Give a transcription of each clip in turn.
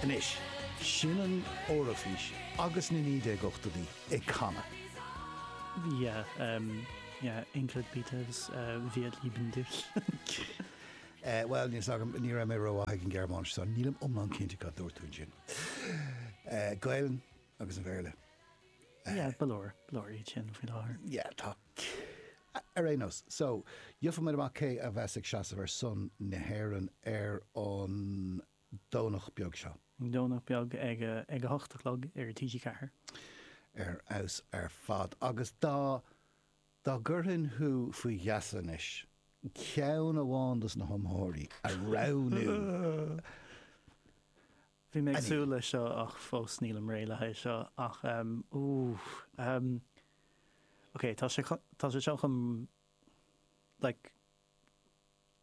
Anois, sin an Eoraifís agus na 1980idí ag canadh. Yeah, um, yeah, Ingrid Peters, uh, wir lieben dich. Eh, bhuel, níl 's agam, ní raibh mé rómhaith ag an Ghearmáinis so nílim iomlán cinnte cad a dúirt tú ansin. Eh, Gaelainn agus an Béarla. Yeah, ba leor, ba leor iad sin faoi láthair. Yeah, tá. Ar aon nós, so, gheobhaimid amach cé a bheas ag seasamh ar son na hÉireann ar an. Domhnach beag seo. Domhnach beag ag a hocht a chlog ar TG4. Ar fheabhas ar fad agus dá dá gcuirfinn thú faoi gheasa anois, ceann amháin dos na hiomaitheoirí a roghnú Bhí mé ag súil leis seo ach fós nílim réidh le haghaidh seo ach ooh ok tá sé tá sé seo chun like.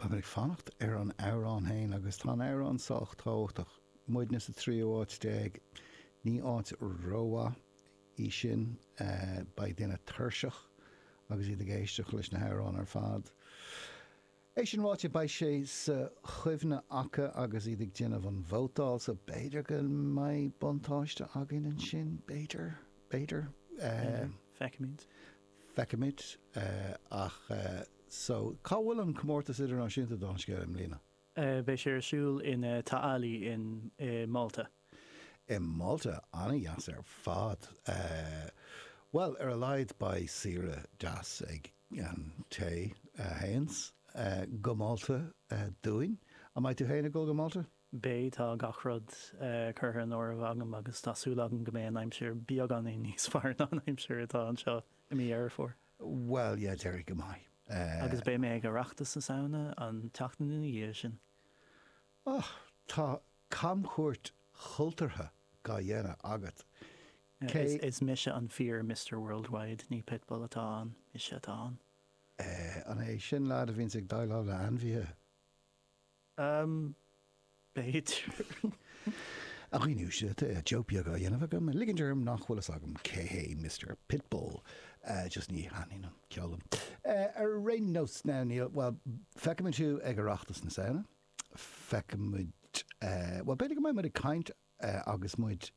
Táim ag fanacht ar an amhrán féin agus tá an amhrán sách tábhachtach. Muidne sa tríú áit déag, ní áit rómhaith í sin. Beidh daoine tuirseach agus iad ag éisteacht leis na hamhráin ar fad. É sin ráite, beidh sé sa chuimhne acu agus iad ag déanamh an vótáil so b'fhéidir go mbeidh buntáiste againn ansin, b'fhéidir, b'fhéidir. B'fhéidir, feicfimid. feicfimid ach so cá bhfuil an comórtas idirnáisiúnta don scéal i mbliana? beidh sé ar siúl in Ta' Qali in i Malta. i Malta? an-dheas ar fad! bhuel ar a laghad beidh saoire deas ag an té a théann go Malta dúinn. an mbeidh tú féin ag dul go Malta? Beidh, tá gach rud curtha in áirithe agam agus tá súil agam go mbeidh an aimsir beagáinín níos fearr ná an aimsir atá anseo i mí Dheireadh Fómhair. Bhuel, yeah, déarfainn go mbeidh. Agus beidh mé ag Oireachtas na Samhna an tseachtain ina dhiaidh sin. Och, tá camchuairt chultúrtha dá dhéanamh agat. Cé. Is mise an fíor Mister Worldwide, ní Pitbull atá ann, mise atá ann. An é sin an leaid a bhíonns ag déileáil le ainmhithe? Am, b'fhéidir. A dhaoine, tá joke beag á dhéanamh agam, ag ligint orm nach bhfuil fhios agam cé hé Mister Pitbull, just ní thaitníonn an ceol liom. Ar aon nós, now, níl, bhuel, feicfimid thú ag Oireachtas na Samhna, feicfimid, bhuel, b'fhéidir go mbeidh muid ag caint, agus muid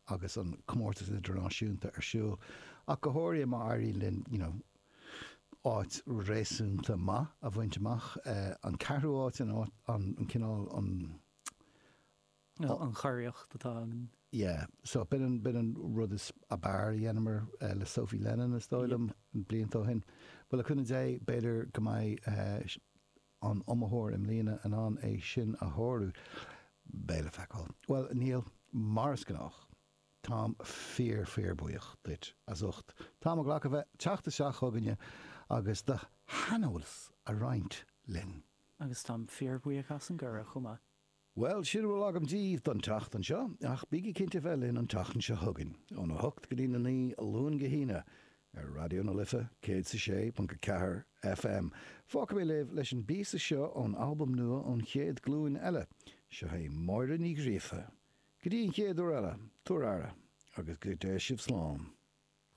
agus an comórtas idirnáisiúnta ar siúl ach go háirithe má éiríonn linn you know áit réasúnta maith a bhaint amach, an ceathrú áit, an áit, an cineál, an, an. an churiarracht atá againn. yeah so b'in an, b'in an rud ab fhearr a dheineamar le Sophie Lennon is dóigh liom blianta ó shin. Bhuel le cúnamh Dé b'fhéidir go mbeidh aon iomaitheoir i mbliana in ann é sin a shárú? Beidh le feiceáil. Bhuel, Niall, mar is gnách, táim fíor fíor buíoch duit as ucht t'am a ghlacadh bheith teacht isteach chugainne agus do shaineolas a roinnt linn. Agus táim fíor bhuíoch as an gcuireadh chomh maith. Bhuel, sin a bhfuil agam díbh don tseachtain seo, ach bígí cinnte a bheith linn an tseachtain seo chugainn, ón 8 go dtí na 9, Luan go hAoine, ar Raidió na Life 106.4 FM. Fágfaidh mé libh leis an bpíosa seo ón albam nua An Chéad Ghlúin Eile. Seo hí Máire Ní Ghríofa. Go dtí an chéad uair eile, tabhair aire, agus go dté sibh slán.